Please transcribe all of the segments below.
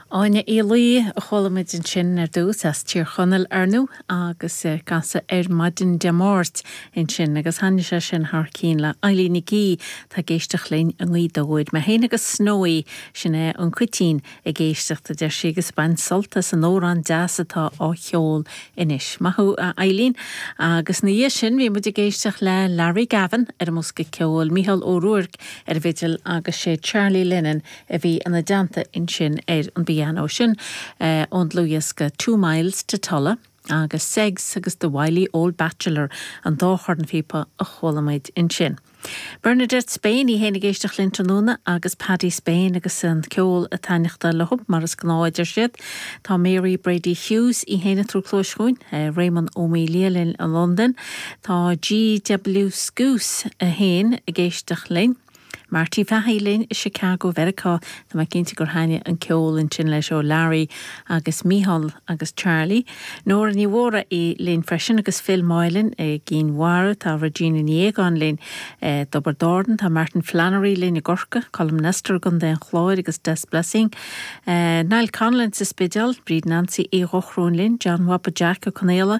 Áine Uí Laoi a chuala muid ansin ar dtús, as Tír Chonaill, ar ndú, agus Ag Casadh ar maidin Dé Máirt ansin, agus thaitnigh sé sin thar cinn le Eilín Nic Aoidh atá ag éisteacht linn i nGaoth Dobhair. Mé féin agus Snowy, sin é an cuitín, ag éisteacht, a deir sí, agus baint sult as an órán deas atá á cheol anois. Maith thú, a Eilín. Agus ina dhiaidh sin, bhí muid ag éisteacht le Larry Gavin ar an mbosca ceoil, Mícheál Ó Ruairc, ar an bhfidil agus sé Charlie Lennon a bhí ina dteannta ansin ar an bpianó. Sin ón dlúthdhiosca Two Miles to Tulla agus Segs agus The Wily Old Bachelor an dá chornphíopa a chuala muid ansin. Bernadette Spain í fhéin ag éisteacht linn tráthnóna agus Paddy Spain agus an ceol a' taitneachtáil leo mar is gnáth a deir siad. Tá Mary Brady Hughes í fhéin ag tabhairt cluais dhúinn, Réamonn Ó Maoildhia linn i Londain, Tá GW Scouse 1 ag éisteacht linn. Marty Fahy linn i Chicago Mheiriceá. Tá mé cinnte gur thaitnigh an ceol ansin leis ó Larry agus Mícheál agus Charlie. Nóra Ní Mhóraí linn freisin agus Phil Moylan i gCinn Mhara. Tá Regina Ní Fhaogáin linn i dTobar Dordan. Tá Martin Flannery linn i gCorca. Colm Nestor i gContae an Chláir agus Des Blessing. Niall Connellan sa Spidéal. Bríd Nancy Uí Dhomhnaill linn. John Bhaba Jeaic Ó Conaola.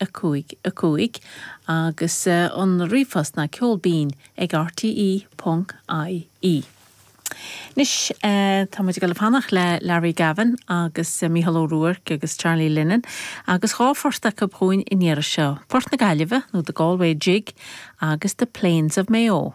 5, 5, agus an ríomhphost ná ceol binn ag rte ponc IE. Anois, tá muid ag dul ag fanacht le Larry Gavin agus Mícheál Ó Ruairc agus Charlie Lennon agus dhá phort acu chugainn an iarraidh seo, Port na Gaillimhe nó The Galway Jig agus The Plains of Mayo.